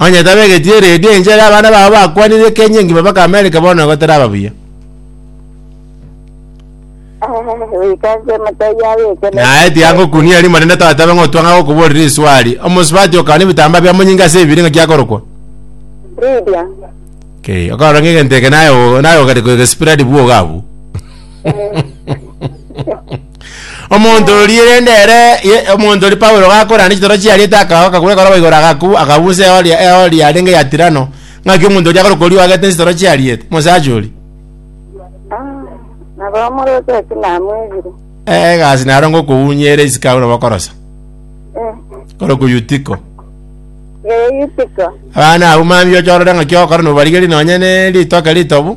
Onye tabegeti eredio enche ere abana bao bakwanire Kenya engima baka America bono igo teraba buya. Wikache matayi yawe ekene. Naye tiagokunia rimo rende toetabe ng'a otwanga gokoborera eswali. Omosubati okana ebitambaa bia monyinga ase ebibiri ng'a kiakorokwa. Lydia. Okay, okarora ng'a egento eke naye o- naye ogare koegespread bwoga abwo. Omonto oria rende ere ye- omonto oria Paulo gakorana chitoro chiariete akaao akagura ekoroba igoro agaku akagusa eori eori yarenge ya Tirano ng'aki omonto oria agore korio agete chitoro chiariete mosacha oria nabo omorokia ase namwegire Eh, egasi naro ngokounyia ere isiko agwo nabo okorosa kore ku Yutiko ee yutiko abana abwo mambia ochorore ng'aki ogokora nobarigerie nonye ne ritoke ritobu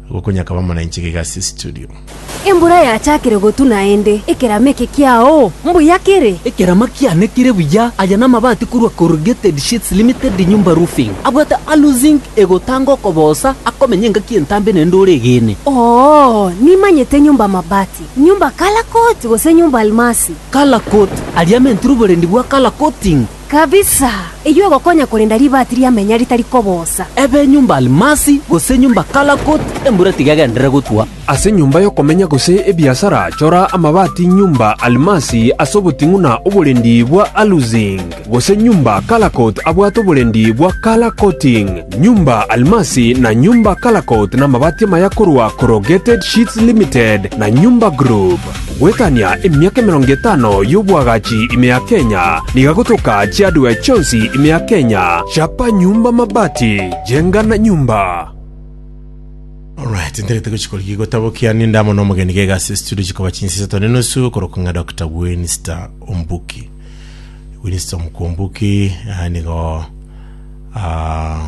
Gokonyakaba amo na inche gega ase studio. Embura yachakire gotu naende ekerama eke kiao mbuya kere. Ekerama kiane kere buya. Aya namabati korwa Corrugated Sheets Limited Nyumba Roofing. Abwate Alu Zinc egotanga okoboosa akomenya engaki entambe naende ore egeene. Oo, nimanyete Nyumba Mabati, Nyumba Color Coat gose Nyumba Almasi. Color Coat, aria amentire oborendi bwa Color Coating. Kabisa! Eyio egokonya korenda ribaati ria menya ritari kobosa. Ebe nyomba Almasi, gose nyomba Kalakut, embura tiga egenderere gotwa. Ase nyomba y'okomenya gose ebiasara chora amabaati nyomba Almasi ase oboting'una oborendi bwa Aluzing, gose nyomba Kalakut abwate oborendi bwa Kalakoting. Nyomba Almasi na nyomba Kalakut namabaati amaya korwa Corrugated Sheets Limited na Nyomba Group. Goetania emiaka emerongo etano y'obwagachi ime ya Kenya, niga gotoka chi'hardware chionsi ime ya Kenya, chapa nyumba mabati, jenga na nyumba. Alright, ntarete gochi korigia gotabokia ninde amo na omogeni gaiga ase studio chikoba chinsa isato ne nusu okorokwa ng'a Dr. Winster Ombuki. Winster Omku Ombuki ah, nigo ah,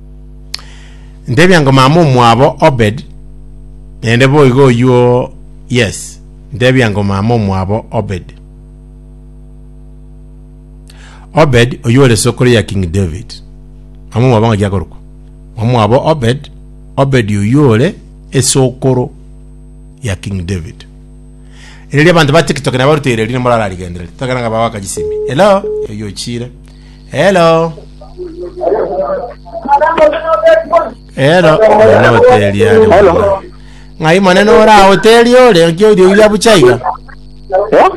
Ntebia ngo mama omwabo Obed, naende boigo oyio yes, ntebia ngo mama omwabo Obed. Obed oyio ore sokoro ya King David. Mama omwabo ng'aki akorokwa? Mama omwabo Obed, Obed oyio ore esokoro ya King David. Ereri abanto ba TikTok nabaruteire riri morararigendereri. Tokera nga bawaka chisimi. Hello, oyio ochire. Hello. Hello. Ore hoteli ari Hello. bwana. Ng'ai monene ora hoteli ore nki eriogi riabucha iga. Eh?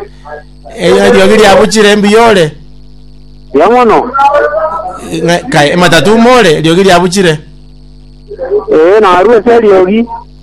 Eyo eriogi riabuchire mbuya ore. Ya mono. Ng'a- kai- Matatu more eriogi riabuchire. Eh, narue seriogi.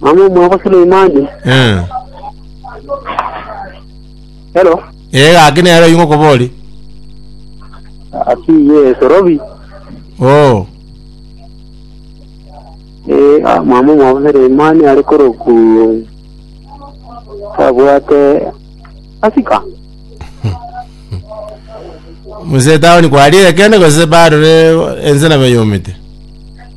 Mama omwabo Suleimani. Eh. Hello. Eh gaki nero ingo kobori. Ati ye Sorobi. Oh. Eh ah, mama omwabo Suleimani ari koroku. Tabwate asika. Muse taoni kwarire kende gose bado ne ense na beyomete.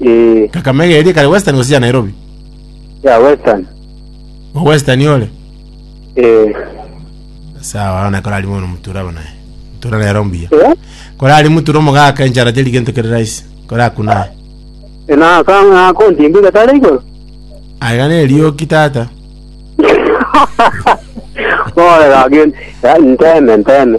Eh, Kakamega eria kare Western gose ya Nairobi? ya Western. O Western ore? Eh, Sawa, na korari mono mutura abo naye. Mutura nero mbuya. eh, Korari mutura omogaka enchara teri gento kere rahisi. Korakuna. eh, na ka na konti mbi gatare igoro. Aiga ne rioki tata. Ore ga gen, nteme nteme.